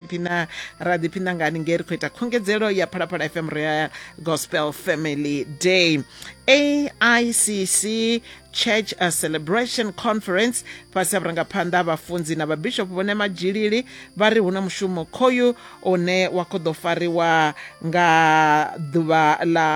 ḓiphina ra ḓiphina ngani nge ri khou ita khungedzelo ya phalaphala fm royal gospel family day aicc church a celebration conference fhasi ha vhurangaphanḓa ha vhafunzi na vhabishopo vhone madzhilili vha ri hu na mushumo khoyu une wa khou ḓo fariwa nga ḓuvha ḽa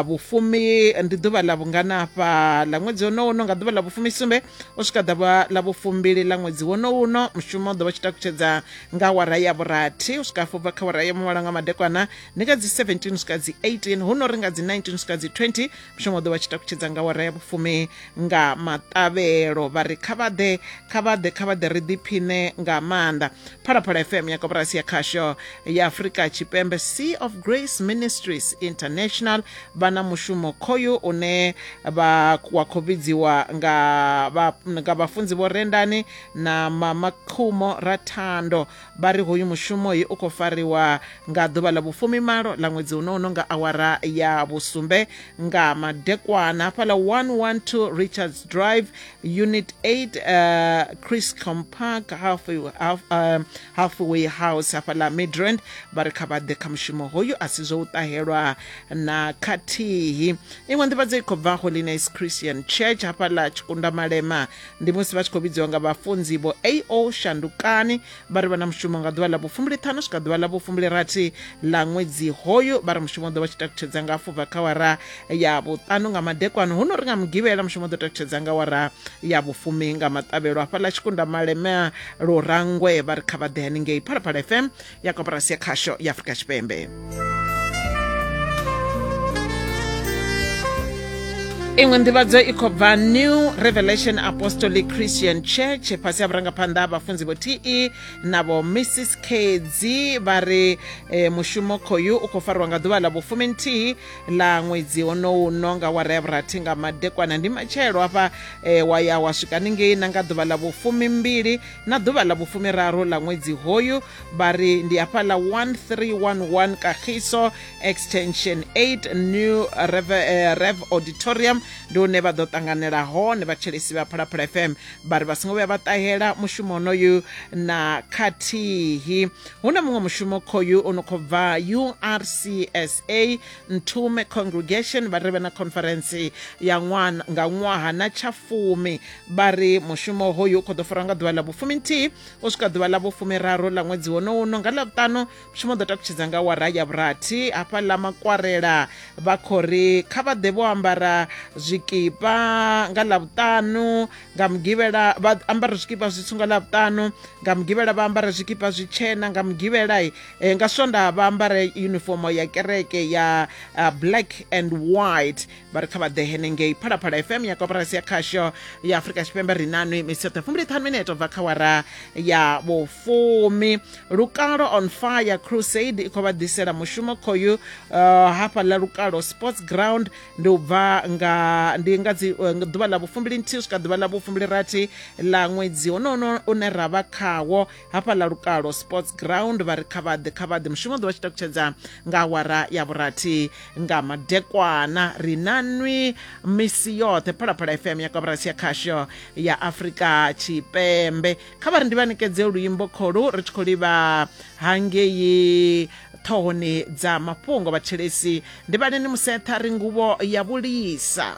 vhufumi ndi ḓuvha ḽa vhunganafha ḽa ṅwedzi wonowono nga ḓuvha ḽa vhufumi sumbe u swika ḓavha ḽa vhufumbili ḽa ṅwedzi wono uno mushumo u ḓo vha tshi takutshedza nga awara ya vhurathi u swika hafhu kha awara ya muvhala nga madekwana ndi nga dzi 17 u swika dzi 18 hu no ri nga dzi 19 u swika dzi 20 mushumo u ḓo vha tshi takutshedza nga awara ya vhufumi nga maṱavhelo vha ri kha vhaḓe kha vhaḓe kha vhaḓe ri ḓiphiṋe nga maanḓa phalaphala fm ya koporasi ya khasho ya afurika tshipembe sea of grace ministries international vha na mushumo khoyu une vha wa khou vhidziwa nga vha nga vhafunzi vho Rendani na Mama Khumo Rathando vha ri hoyu mushumo hi u khou fariwa nga ḓuvha ḽa vhufumi malo ḽa ṅwedzi uno uno nga awara ya vhusumbe nga madekwana hafhaḽa 112 Richards Drive Unit 8 uh, Criscom Park halfway, half, uh, halfway House hafhaḽa Midrand vha ri kha vha ḓe kha mushumo hoyu a si zwo u ṱahelwa na khathihi iṅwe nḓivhadzo i khou bva holiness christian church hafhaḽa tshikunda malema ndi musi vha tshi khou vhidziwa nga vhafunzi vho ao shandukani vha ri vha na mushumo nga ḓuvha ḽa vhufumbili ṱhanu swika ḓuvha ḽa vhufumbili rathi ḽa ṅwedzi hoyu vha ri mushumo ḓo vha tshi takutshedza nga fubva kha wara ya vhuṱanu nga madekwano huno ri nga mugivhela mushumo ḓo takutshedza nga wara ya vhufumi nga maṱavhelo hafhaḽa tshikunda malema lurangwe vha ri kha vha ḓe haningei phalaphala fm ya koporasi ya khasho ya aforika tshipembe iṅwe nḓivhadzo i khou bva new revelation apostolic christian church fhasi ha vhurangaphanḓa ha vhafunzi vho te na vho mrs kedzi vha ri e, mushumo khoyu u khou fariwa nga ḓuvha ḽa vhufumi nthihi ḽa ṅwedzi honouno nga wara ya vhurathi nga madekwana ndi matshelo hafha e, wa ya wa swika ningei na nga ḓuvha ḽa vhufumi mbili na ḓuvha ḽa vhufumiraru ḽa ṅwedzi hoyu vha ri ndi hafhaḽa 1311 kagiso extension 8 new rev, eh, rev auditorium ndi hune vha ḓo ṱanganela hone vhatshelesi vha phalaphala fm vha ri vha songo vhuya vha ṱahela mushumo onoyu na khathihi hu na muṅwe mushumo khoyu o no khou bva urcsa ntume congregation vha ri vhe na conference ya ṅwana nga ṅwaha na tsha fumi vha ri mushumo hoyu u khou ḓo farwa nga ḓuvha ḽa vhufumi nthihi u swika ḓuvha ḽa vhufumi raru ḽa ṅwedzi wonowu no nga ḽavhuṱanu mushumo ḓo takutshedza nga wara ya vhurathi hafha ḽa makwarela vha khou ri kha vha ḓe vho ambara zwikipa nga ḽavhuṱanu nga mugivhela vha ambara zwikipa zwitswu nga ḽavhuṱanu nga mugivhela vha ambara zwikipa zwitshena nga mugivhela eh, nga swonda vha ambara yunifomo ya kereke ya uh, black and white vha ri kha vha ḓe henengei phalaphala fm ya koporasi ya khasho ya afurika tshipembe ri nanwi misi yoṱhe fumbiliṱhanu mineto bva kha wara ya vhufumi lukalo on fire crusade i khou vha ḓisela mushumo khoyu uh, hafha ḽa lukalo sports ground ndi u bva nga ndi nga dzi uh, ḓuvha ḽa vhufumbili nthihi swika ḓuvha ḽa vhufumbili rathi ḽa ṅwedzi honohono une ra vha khawo hafha ḽa lukalo sports ground vha ri kha vhaḓe kha vhaḓe mushumo ḓo vha tshi takutshedza nga awara ya vhurathi nga madekwana ri na nwi misi yoṱhe phalaphala fm ya kaburasi ya khasho ya afurika tshipembe kha vha ri ndi vha ṋekedze luimbo kholu ri tshi khou livha hangei ṱhohoni dza mafhungo vhatshelesi ndi vhaleni musetha ri nguvho ya vhulisa